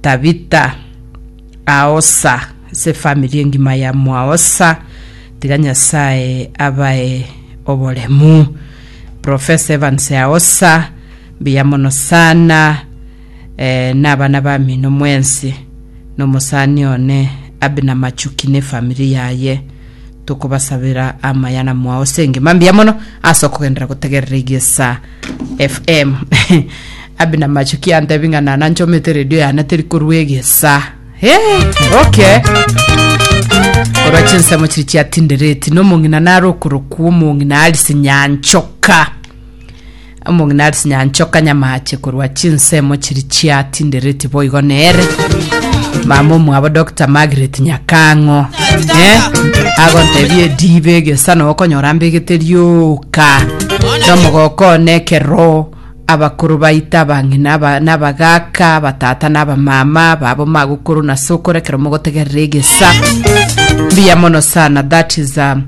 Tabitha, Aosa, ase efamiri engima ya Mwaosa, tiga Nyasae abae oboremu. Professor Evans Aosa, mbuya mono sana eh, na abana bamino mwensi, na omosani one Abner Machuki na efamiri yaye. tokobasabera amaya na mwao ase engima mbuya mono ase okogendera gotegerera egesa fm abi na macho kiantebi ng'a nana nchomete redio yane teri korwa egesa hey, okay korwa chinsemo chiri chiatindereti nomong'ina nare okorokwa omong'ina arisi nyanchoka Omong'ina are sinyanchoka nyamache korwa chinsemo chiri chiatindereti boigo nere mama omwabo Dr. Margaret Nyakang'o eh? agontebia edibe egesa na okonyora mbegete rioka nomogokone ekero abakoro baita abang'ina aba- nabagaka abatata na abamama babo magokoro na sokoro ekero mogotegerera egesa mbuya mono sana that is um,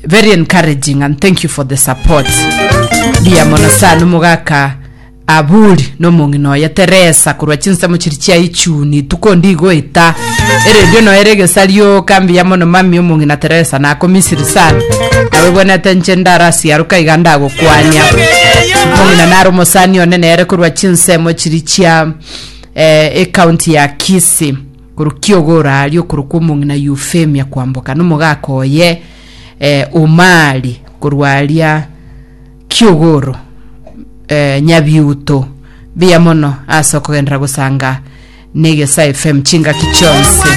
Very encouraging and thank you for the support. Mbuya mono sana omogaka Aburi na omong'ina oye Teresa korwa chinsemo chiri chia ichuni tuko ndigoeta eredio noyo ere egesarioka mbuya mono mami omong'ina Teresa nakomisiri sana nawe bwenete nche ndarasiaruka iga ndagokwania omong'ina nare omosani one nere korwa chinsemo chiri chia eh, ekaunti ya Kisii Korwa kiogora aria korokwa omong'ina Eufemia kwamboka nomogaaka oye eh, Omari, korwa aria kiogoro eh, nyabiuto biya mono ase okogenderera gosanga negesae fm chingaki chionsi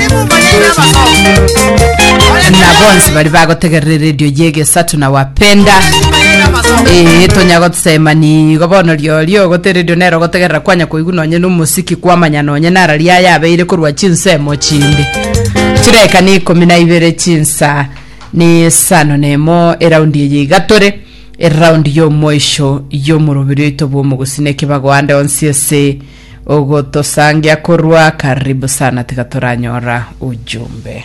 na bonsi bari bagotegerera eredio yegesato na wapenda ee tonya gotsema nigo bono riorio goteredio nero gotegerera kwanya koigwa nonye nomosiki kwamanya Nonye nara ria yabeire korwa chinsemo chinde chireka ni ikomi na ibere chinsa ni sano nemo eraundi eye igatore eraundi y'omoisho y'omorobiri oito bw'omogusii na ekebago ande onsi ase ogotosangia korwa karibu sana tiga toranyora ujumbe